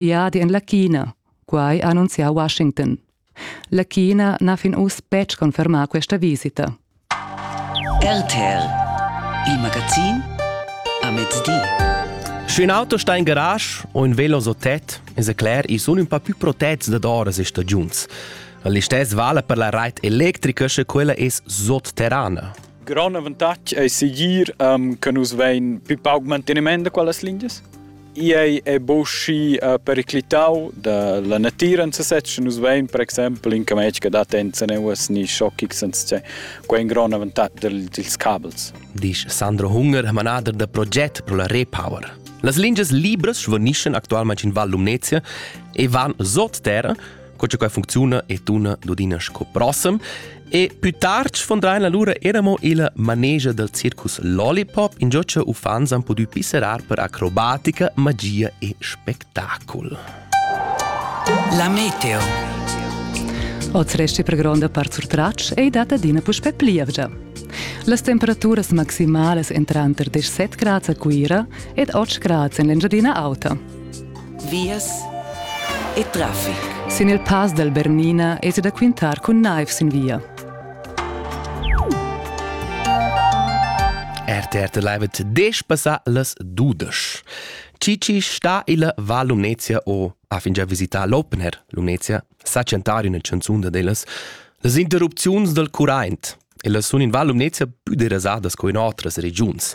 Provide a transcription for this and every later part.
viadi en la China, quai ha annunzià Washington. La China n'ha fin uss betg confermà questa visita. RTL, il magazin a mezdi. Sch'ün auto sta in garage o ün velo so tet, es cler, i sun ün pa più protets dad oras e stagiuns. L'istess vala per la rait electrica, sche quella es sotterrana. Grand avantatg è segir um, che nus vein più pauc manteniment da quellas lingias. Ei è buschi uh, periclitau dalla natira en sesez. Nus vein per exempel in cametg che dat enza neuas ni schoccig senza quei in grond avantatg dils cabels. Disch Sandro Hunger, manader da proget pro la Repower. Las lingias libras svanischen actualmente in Val Lumnezia e van sot terra co che quai funcziuna e tuna dudina sco prossem. E più tard sfondrain allura eramo il manegia del circus Lollipop, in gioccia uffans han pudü pisserar per acrobatica, magia e spettacol. La meteo. Oz resti per gronda part sur tracc ei data d'ina puspè plievgia. Las temperaturas maximalas entran tranter 17 grads a Cuira ed 8 grads en l'Engiadina Auta. vias e traffic. Sin il pass dal Bernina es da quintar cun naiv sin via. RTRT Live et desch passa las dudesch. Cici sta illa Val Lumnezia o ha fingià visità l'Opener Lumnezia sa chantar üna chanzun da dellas las interrupziuns dal curraint. Ellas sun in Val Lumnezia pü derasadas co in otras regiuns.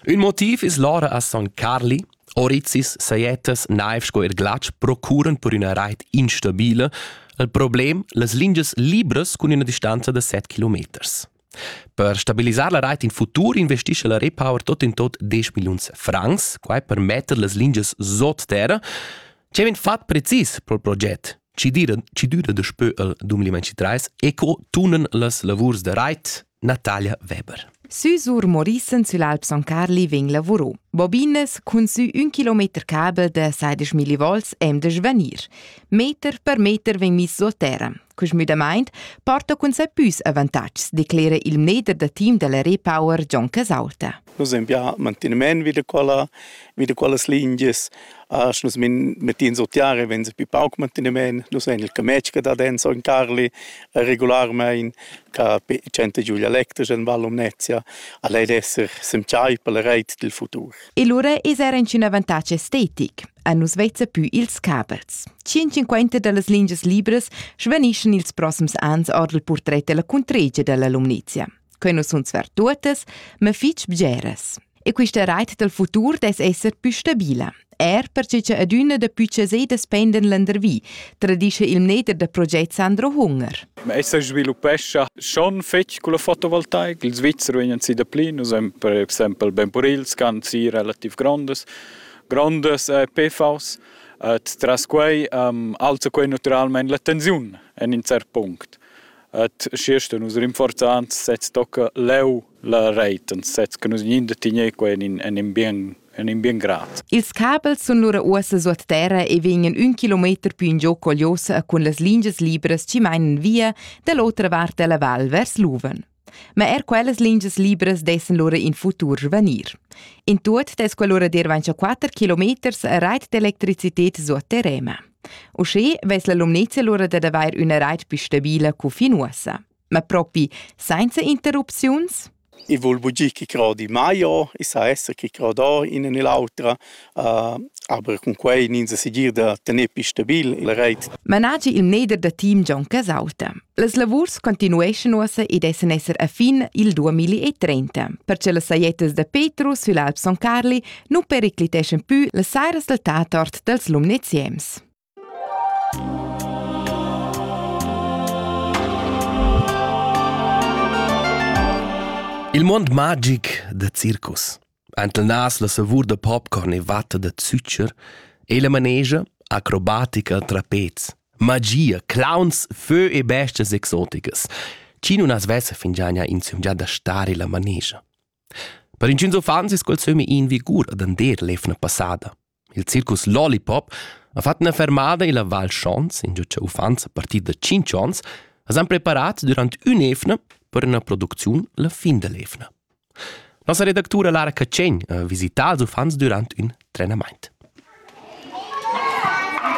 Ün motiv es l'ora a Son Carli, Orizis sajettas naiv sco er glatsch procuran per üna rait instabila al problem las lingias libras cun üna distanza da 7 kilometers. Per stabilisar la rait in futur investisce la Repower tot in tot 10 milliuns francs, quai per metter las lingias sot terra, ce vegn fat precis pel proget, ci dira, ci düra daspö al 2023 e co tunan las lavurs da rait Natalia Weber. Sü sur Morissen süll'Alp Son Carli vegn lavurò. Bobines cun sü ün kilometer cabel da 16.000 volts hem de svanir. Meter per meter vegn miss sur terra. Cus müdamaint porta cun se püs avantatgs, declera il mneder da team della Repower John Casaulta. Nus ein bia mantinements vid quella, vid quellas lingias, asch nus mettin sut tiara e venza pi pauc mantinements. Nus ein il cametg che dat en Sogn Carli regularmein, ca tschenta giu dialectas en Val Lumnezia. Al ei d'esser s'entschai per la reit dil futur. E lura eis era in avantatg estetic. A nus vezza pü ils caberts. 150 da las lingias libras svanischan ils prossems ans ord il purtret della cuntregia della Lumnezia. Quei nu sun sver tuottas, ma fich bgeras. E quista rait dal futur dess esser pü stabila. Er perche cha adüna da pü chasedas pendan landervi, tradischa il mneder da proget Sandro Hunger. Ma essa sviluppescha schon fetg con la fotovoltaik. Il Svizzer vegnan si da pli, nus hem per exempel ben purils che han si relativ grondas, grondas eh, PVs. Et tras quei um, alza quei naturalmente la tensiun en in cert punct. Ed schiasta nus rinforzand sez tocca leu la reit und sez che nus gninde tigner quei en in, en in bien en in bien grad. Ils cabels sun lura uossa suot terra e vegnan ün kilometer più in giò cogliosa cun las lingias libras chi mainan via da l'otra vart della val vers Luven. Ma er quellas lingias libras dessen lura in futur svanir. In tuot des quell'ora dir vancia 4 kilometers reit d'electricitet suot terrema. Uschè vess la Lumnezia lura dad avair üna rait pü stabila co fin uossa. Ma propi sainza interrupziuns? I vul bugir chi crodi mai o, i sa esser chi crodò ina e l'autra, uh, aber cun quai ins segir da tener pü stabil la reit. Managi il mneder da team Gian Casauta. Las lavurs continueschan uossa ed essan esser a fin il 2030, perche las sajettas da Petrus sül Alp Son Carli nu pericliteschan pü las sairas dal Tatort dals Lumneziems. Il mond magic da circus Entelnas la savur da popcorn e vatta da zücher e la manegia, acrobatica tra pez, magia, clowns, fö e bestias exoticas. Chi nun as vessa fingiania insumgià da stare illa manegia. Per inchüns uffants es quel sömmi in vigur ad ander l'eivna passada. Il circus Lollipop ha fatg ina fermada illa Val Schons, ingio cha uffants a partir da tschinch ons as han preparats dürant ün'eivna per üna producziun la fin da l'eivna. Nossa redactura Lara Catschegn ha visità ils uffants dürant ün trenamaint.